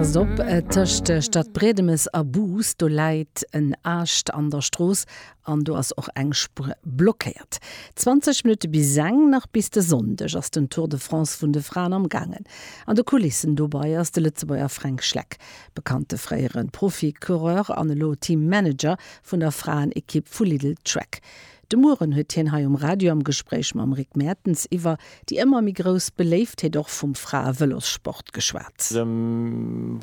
Passt op, tëscht Stadbriedemes a Bous, do läit en Aascht an der Strooss an do ass och eng Spuer blockéiert. 20 Minutte bis seng nach. Bis de Sonndeg ass den Tour de France vun de Fraen am Gaangen. An de Kulissen dobei ass de Lëtzebuerger Fränk Schleck, bekannte fréiere Profi-Coureur an elo Team-Manager vun der Fraen-Ekipp vu Lidl Trek. De Mueren huet hien hei um Radio am Gespréich mam Rick Mertens iwwer déi ëmmer méi grouss Beléiftheet och vum Frae-Vëlossport geschwat. De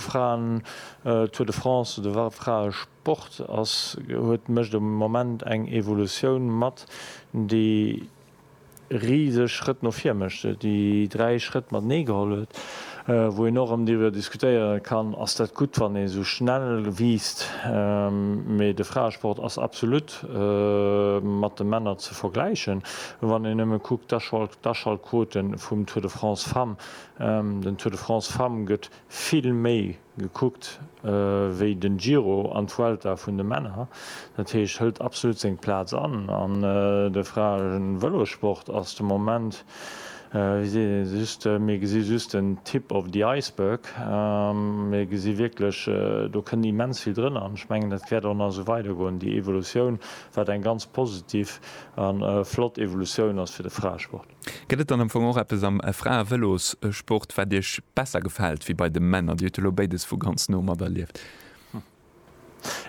Fraen-Tour de France, de Fraesport ass, huet, mécht am Moment eng Evolutioun mat, déi riseg Schrëtt no vir mécht, se déi dräi Schrëtt matenee geholl huet, wou een och erëm driwwer diskutéiere kann, ass dat gutt, wann ee sou schnell wiisst, mee de Fraesport ass absolut mat de Männer ze vergläichen, wann een nëmme kuckt d'Aschaltquote vum Tour de France Femmes, den Tour de France Femmes gëtt vill méi. Gekuckt wéi den Giro an d'Vuelta vun de Männer, dat heescht hëlt absolut seng Plaz an. An de Fraen Vëlossport ass de Moment, wéi seet een, just, mir gesi just den Tip of the iceberg. Mir gesi wierklech, do kënnt immens vill drënner an ech mengen dat wäert och nach esou weider goen, déi Evolutioun, wat eng ganz positiv a flott Evolutioun ass fir de Fraesport. Gëtt et dann am Fong och eppes am Frae-Vëlossport, wat Iech besser gefält wéi bei de Männer? Dir hutt elo béides vu ganz no materlieft.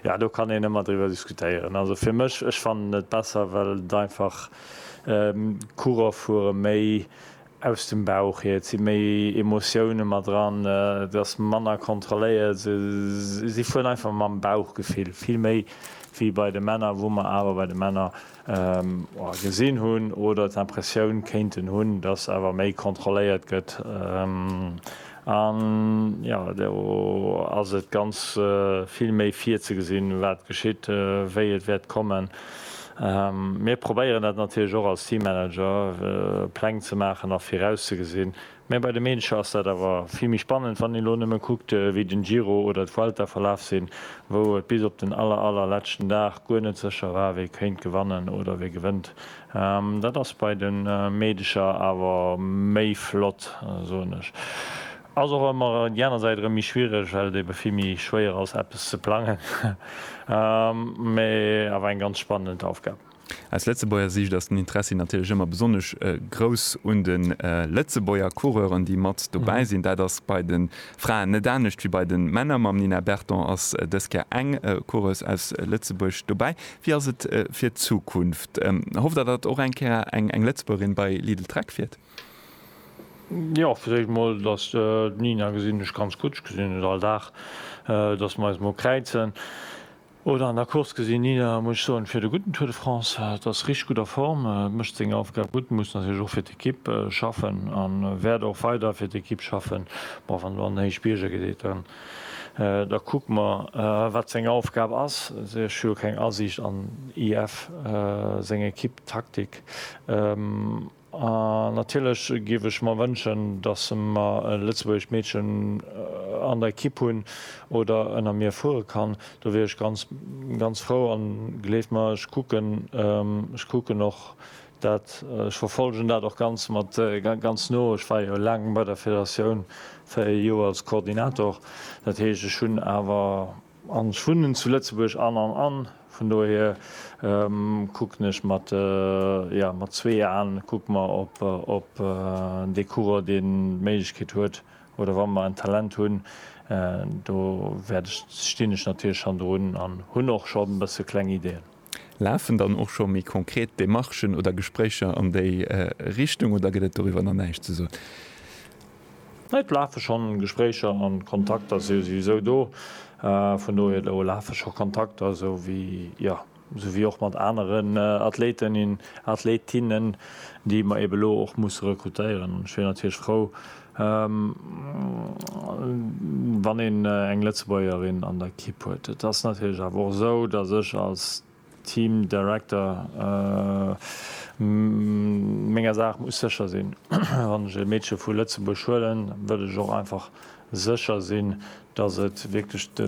Jo, do kann een ëmmer driwwer diskutéieren. Also fir mech, ech fannen et besser, well et einfach, d'Coureur fuere méi aus dem Bauch hier, et si méi Emotioune mat dran, et ass manner kontrolléiert, se si fueren einfach mam Bauchgefill, vill méi wéi bei de Männer, wou mer awer bei de Männer Gesinn hunn oder d'Impressioun kéinten hunn, dass awer méi kontrolléiert gëtt. An jo, do ass et ganz vill méi virzegesinn, wat geschitt, wéi et wäert kommen. Mir probéieren dat natierlech och als Teammanager, Pläng ze maachen a virauszegesinn, Mä bei de Meedercher ass dat awer vill méi spannend, wann een elo nëmme kuckt, wéi den Giro oder d'Vuelta verlaf sinn, wou et bis op den aller, aller leschten Dag guer net sécher war, wie kéint gewannen oder wie gewënnt. Dat ass bei de Meedercher awer méi flott, soen ech. Ass och ëmmer déi aner Säit erëm méi schwiereg, well et ebe vill méi schwéier ass, eppes ze plangen. Mä awer eng ganz spannend Aufgab. Aus Lëtzebuerger Siicht ass den Interessi natierlech ëmmer besonnesch grouss un de Lëtzebuerger Coureuren, déi mat dobäi sinn. Dat ass bei de Fraen net anescht wéi bei de Männer. Mam Nina Berton ass dës Kéier eng Coureuse aus Lëtzebuerg dobäi. Wéi ass et fir d'Zukunft? Hofft Der, datt och eng Kéier eng Lëtzebuergerin bei Lidl-Trek fiert? Jo, fir d'éischt emol, datt d'Nina gesinn ech ganz gutt. Ech gesinn et all Dag, datt mer eis emol kräizen. Oder an der Course gesinn, Nina muss ech soen, fiert e gudden Tour de France, hat, ass richteg gutt a Form, mécht seng Aufgab gutt, muss natierlech och fir d'Ekipp schaffen a wäert och weider fir d'Ekipp schaffen. Bon, wann do an den Héichbierger geet, dann da kucke mer wat seng Aufgab ass. Ech hu jo keng Asiicht an IF seng Ekipp, d'Taktik. A natierlech géif ech mer wënschen, datt mer e lëtzebuergescht Meedchen an der Ekipp hunn oder ënner mir fuere kann. Do wier ech ganz, ganz frou. An gleeft mer, ech kucken, ech kucken och dat, ech verfollegen dat och ganz mat, ganz no. Ech war jo laang bei der Federatioun, véier Joer als Koordinator. Dat heescht, ech hunn awer An ech wunnen zu Lëtzebuerg an an an vun dohier kucken ech mat, jo, mat zwee Aen kucke mer op dee Coureur, dee d'Méiglechkeet huet oder wa mer en Talent hunn, do wäert ech, stinn ech natierlech schonn drun an hunn och schonn e bësse kleng Ideeën. Lafen dann och scho méi konkret Demarchen oder Gespréicher an déi Richtung oder gëtt et doriwwer nach näischt ze soen? Et lafe schonn Gespréicher an Kontakter si souwisou do. Vun dohier do lafe scho Kontakter, sou wéi, jo, sou wéi och mat aneren Athleten in, Athletinnen, déi mer eeben elo och musse rekrutéieren. An ech wier natierlech frou, Wann een eng Lëtzebuergerin an der Kipp huet. Et ass natierlech awer och esou, datt ech als Team Director menger Saach muss sécher sinn. Wann ech e Meedche vu Lëtzebuerg huelen, wëll ech och einfach sécher sinn, datt et wierklech de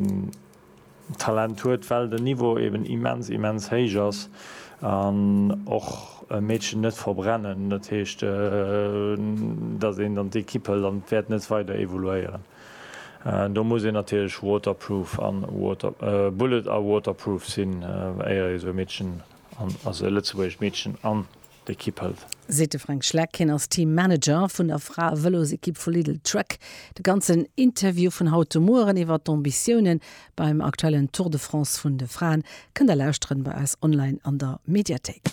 Talent huet, well den Niveau eben immens, immens héich ass an och e Meedchen net verbrennen. Dat heescht, datt een dann d'Ekipp hëlt an et wäert net weider evoluéieren. Do muss een natierlech waterproof a bullet a waterproof sinn, éier ee sou e Meedchen, also e lëtzebuergescht Meedchen, an d'Ekipp hëlt. Seet de Fränk Schleck. Hien ass Team Manager vun der Frae-Vëlosekipp vu Lidl Trek. De ganzen Interview vun haut de Mueren iwwer d'Ambitiounen beim aktuellen Tour de France vun de Fraen kënnt der lauschteren bei eis online an der Mediathéik.